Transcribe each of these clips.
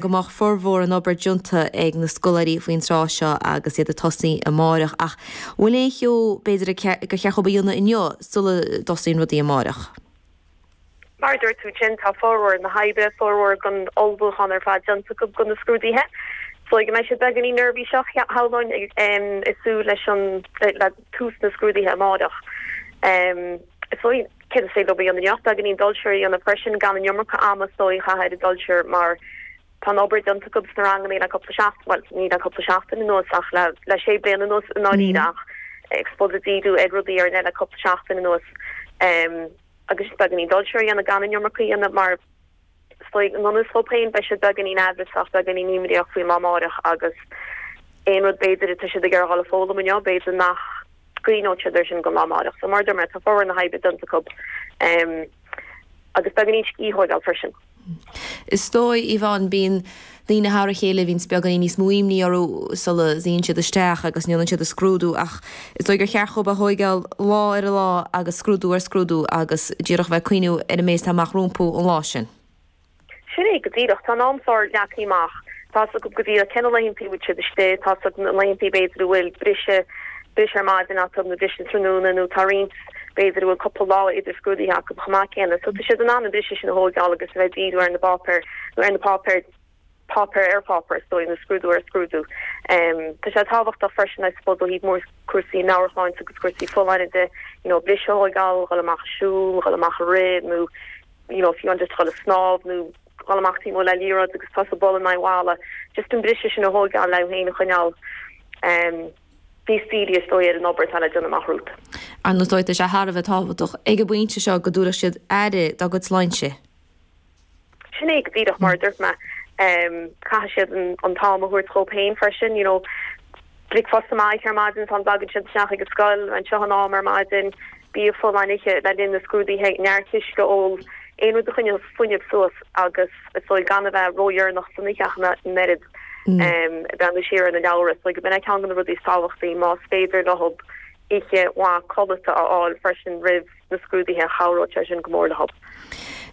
go mbeadh formhór an obair déanta ag na scoláirí faoin tráth seo agus iad ag tosaí amáireach ach an bhfuil aon cheo b'fhéidir gur cheart dhób a dhéanamh inniu sula dtosaíonn rudaí amáireach? Mar a dúirt tú ansin, tá formhór na hoibre, formhór an ullmhúcháin ar fad déanta acu do na scrúduithe. So go mbeidh siad beagáinín neirbhíseach, shamhlóinn, ag súil leis an, le tús na scrúduithe amáireach, Is dóigh, céard is ceart dhób a dhéanamh inniu, beagáinín dul siar a dhéanamh freisin, gan an iomarca ama is dóigh a chaitheamh ar an dul siar mar tá an obair déanta acu sna ranganna le cúpla seachtain, bhuel, ní le cúpla seachtain anuas ach le, le sé bliana anuas i ndáiríre ach I suppose ag díriú ar rudaí ar leith le cúpla seachtain anuas. Agus just beagáinín dul siar a dhéanamh gan an iomarca a dhéanamh mar. Stoic na n-ollscoil féin, beidh siad beagáinín aimhreasach, beagáinín imníoch faoin lá amáireach agus aon rud b'fhéidir atá siad ag traíáil a fhoghlaim inniu, b'fhéidir nach gcuimhneoidh siad air sin go lá amáireach. So mar a deir mé, tá formhór na hoibre déanta acu agus beagáinín scíth a thógáil freisin. Is dóigh, Yvonne, bíonn Daoine thar a chéile a bhíonns beagáinín níos mó imní orthu sula suíonn siad isteach agus ndéanann siad a scrúdú ach is dóigh gur cheart dhób é a thóigeáil lá ar lá agus scrúdú ar scrúdú agus díreach bheith ag cuimhneamh ar an méid atá amach rompu an lá sin. Sin é go díreach. Tá an t-am sórt leagtha amach. Tá's acu go díreach cé na laethanta a bhfuil siad istigh, tá's acu na laethanta b'fhéidir a bhfuil briseadh, briseadh ar maidin acu nó briseadh tráthnóna nó tá roinnt, b'fhéidir a bhfuil cúpla lá idir scrúduithe acu chomh maith céanna. So tá siad in ann an briseadh sin a thóigeáil agus a bheith ag díriú ar na bpáipéir nó ar na páipéir, páipéar ar pháipéar is dóigh nó scrúdú ar scrúdú. Tá sé tábhachtach freisin I suppose ó thaobh mhór cúrsaí meabhairshláinte agus cúrsaí folláine de you know briseadh a thóigeáil, dhul amach ag siúl, dhul amach ag rith nó you know fiú amháin just dhul ag snámh nó dhul amach taobh amuigh le liathróid agus tosaí ag bualadh in aghaidh an bhalla, just an briseadh sin a thóigeáil le iad féin a choinneáil. Bhi Stevie is dóigh ar an obair atá le déanamh amach romhat. Ar ndóigh, tá sé thar a bheith tábhachtach ag an bpointe seo go dtabharfadh siad aire dá gcuid sláinte. Sin é go díreach mar a dúirt mé. Caithfidh siad an t-am a thabhairt dhóibh féin freisin, you know. Bricfeasta maith ar maidin sula dtagann siad isteach ag an scoil, anseo in am ar maidin, bia folláin a ithe le linn na scrúduithe, neart uisce a ól, aon rud a choinneodh fuinneamh suas agus is dóigh gan a bheith ródheireanach san oíche ach an oiread. Breathnú siar ar na leabhra. So, b'in é ceann de na rudaí is tábhachtaí, más féidir leob oíche mhaith codlata a fháil freisin roimh na scrúduithe, chabhródh sé sin go mór leob.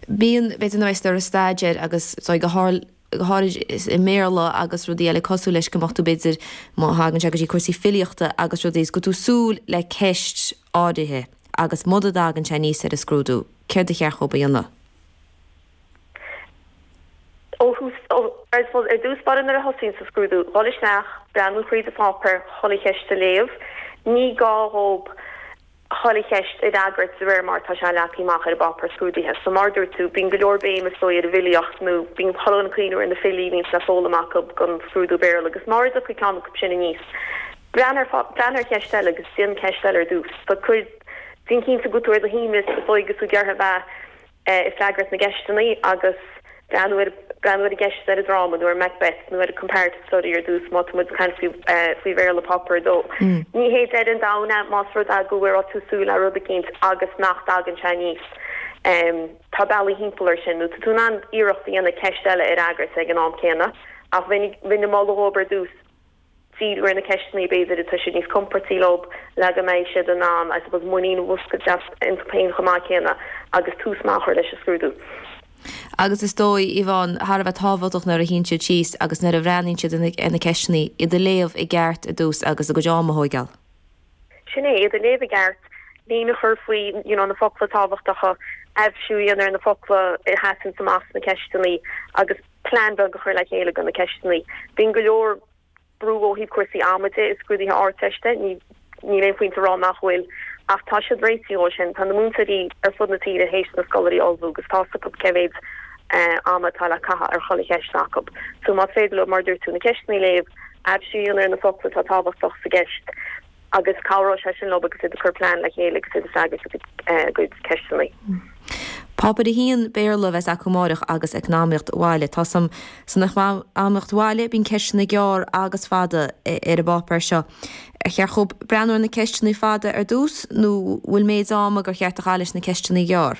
Bíonn, b'fhéidir, nuair a bhíonns tú ag staidéar agus, so, go háirid i mBéarla agus rudaí eile cosúil leis, go mbeadh tú, b'fhéidir, má thagann sé go dtí cúrsaí filíochta agus rudaí, is go bhfuil tú ag súil le ceist áirithe agus muna dtagann sé aníos ar an scrúdú, céard ba cheart dhób a dhéanamh? Ar dtús báire nuair a thosaíonn sa scrúdú, dul isteach, breathnú thríd an pháipéar, chuile cheist a léamh. Ní gá dhóibh chuile cheist a fhreagairt de réir mar atá sé leagtha amach ar an bpáipéar scrúdaithe. So mar a dúirt tú, bíonn go leor béim is dóigh ar an bhfilíocht nó bíonn muid ag cuimhneamh ar na filí a bhíonns le foghlaim acu don scrúdú Béarla agus mara dtiocfaidh ceann acu sin aníos, breathnú ar cheist eile agus déan ceist eile ar dtús. So cuir, déan cinnte go bhfuil tú ar do shuaimhneas is dóigh agus tú dearfach a bheith. ag freagairt na gceisteanna agus, breathnú ar an gceist ar an dráma nó ar Macbeth nó ar comparative study ar dtús má tá muid ag caint faoi Bhéarla Páipéar 2. Ní hé deireadh an domhain é más rud é go bhfuil tú ag súil le rud eicínt agus nach dtagann sé aníos. Tá bealaí timpeall air sin nó tá tú in ann iarracht a dhéanamh ceist eile a fhreagairt ag an am céanna ach bheinn ag moladh dhóibh ar dtús. díriú ar na ceisteanna b'fhéidir atá siad níos compordaí leo le go mbeidh siad in ann, I suppose, muinín a mhúscailt iontu féin chomh maith céanna, agus tús maith a chur leis an scrúdú. Agus is dóigh, Yvonne, thar a bheith tábhachtach nuair a shuíonn siad síos agus nuair a bhreathnaíonn siad ar na ceisteanna, iad a léamh i gceart ar dtús agus a gcuid am a thóigeáil. Sin é, iad a léamh i gceart, líne a chur faoi you know na focla tábhachtacha, aibhsiú a dhéanamh ar na focla a sheasann amach sna ceisteanna agus, plean beag a chur le chéile do na ceisteanna. Bíonn go leor brú ó thaobh cúrsaí ama de i scrúduithe na hArdteiste, níl aon phointe a rá nach bhfuil, ach tá siad réitithe dó sin. Tá na múinteoirí ar fud na tíre théis na scoláirí a ullmhú agus tá's acu cé mhéid ama atá le caitheamh ar chuile cheist acu. So más féidir leo, mar a dúirt tú, na ceisteanna a léamh, aibhsiú a dhéanamh ar na focla atá tábhachtach sa gceist, agus cabhróidh sé sin leo agus iad ag cur plean le chéile agus iad ag freagairt a gcuid ceisteanna. Páipéar 1, Béarla, a bheas acu amáireach agus Eacnamaíocht Bhaile. Tá 's agam san Eacnamaíocht Bhaile, bíonn ceisteanna gearr agus fada ar an bpáipéar seo. Ar cheart dhóibh breathnú ar na ceisteanna fada ar dtús nó bhfuil méid ama gur cheart a chaitheamh leis na ceisteanna gearr?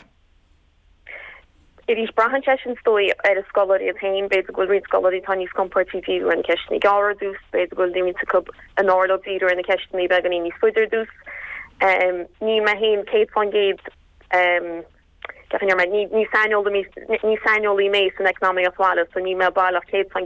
Arís, braitheann sé sin, is dóigh, ar na scoláirí iad féin. B'fhéidir go bhfuil roinnt scoláirí atá níos compordaí díriú ar na ceisteanna gearra ar dtús, b'fhéidir go bhfuil roinnt acu arbh fhearr leo díriú ar na ceisteanna beagáinín níos faide ar dtús. Níl mé féin céad fán gcéad deimhin air mar, ní saineolaí mé san eacnamaíocht bhaile so níl mé baileach céad fán